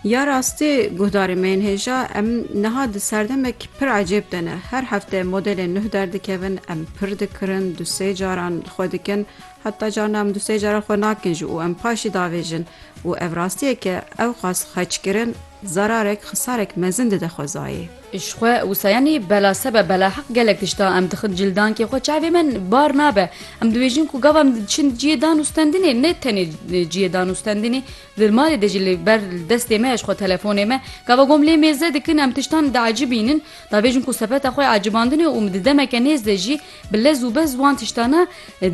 Ya rastî guhdarê me yên hêja em niha di serdemek pir ecêb de ne. Her hefte modelên nuh derdikevin, em pir dikirin, du sê caran xwe dikin, heta carna em du sê caran xwe nakin jî û em paşî davêjin û ev rastiyeke ewqas xeçkirin zararek, xisarek mezin dide xwezayê. Ji xwe wisa yanî bela se be bela heq gelek tişta em dixin cildankê xwe çavê me bar nabe em dibêjin ku gava em diçin ciyê dan û stendinê ne tenê ciyê dan û stendinê di malê de jî li ber destê me ji xwe telefonê me gava gom lê mêze dikin em tiştan diecibînin dabêjin ku sepeta xwe ecibandinê û min di demeke nêz de jî bi lez û bez wan tiştana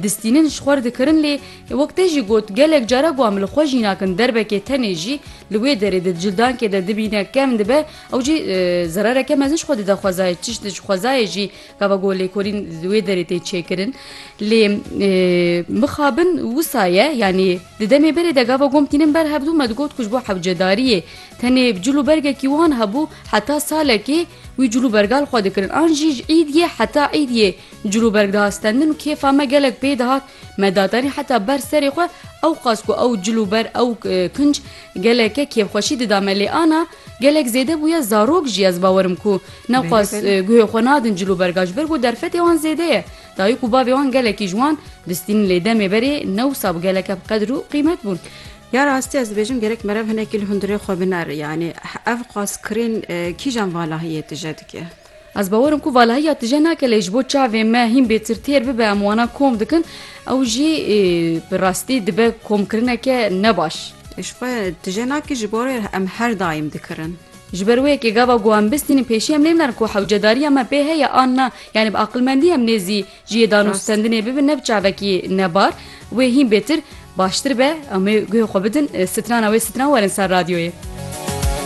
distînin ji xwe dikirin lê wek te jî got gelek cara ku em li xwe jî nakin derbekê tenê jî li wê derê di cildankê de dibîne kem dibe Ew jî zerareke mezin ji xwe dide xwezayê çişt ji xwezayê jî gava ku lêkolîn di wê derê tê çêkirin lê mixabin wisa ye yanî di demê berê de gava gom tînin ber hevdû me digot ku ji bo hewcedariyê tenê cil û bergekî wan hebû heta salekê wî cil û bergal xwe dikirin an jî ji îdyê heta îdyê cil û berg diha stendin û kêfa me gelek pê dihat me datanî heta ber serê xwe ew qas ku ew cil û ber ew kinc geleke kêfxweşî dida me lê ana Gelek zêde bûye zarok jî ez bawer im ku newqas guhê xwe nadin cil û berga ji ber ku derfetê wan zêde ye. Dayik û bavê wan gelekî ji wan bistînin lê demê berê ne wisa bi geleke bi qedir û qîmet bûn. Ya rastî ez dibêjim gerek merev hinekî li hundirê xwe biner. Yanî ev qas kirîn kîjan valahiyê tije dike? Ez bawer im ku valahiya tije nake lê ji bo çavên me hîn bêtir têr bibe em wana kom dikin ew jî bi rastî dibe komkirineke ne baş. Ji xwe tije nake ji bo rê em her daîm dikirin. Ji ber wê yekê gava ku em bistînin pêşî em nêmilin ku hewcedariya me pê heye an na yanî bi aqilmendî em nêzî ji yê danûstendinê bibin ne bi çavekî nebar wê hîn bêtir baştir be em ê guhê xwe bidin strana wê stran werin ser radyoyê.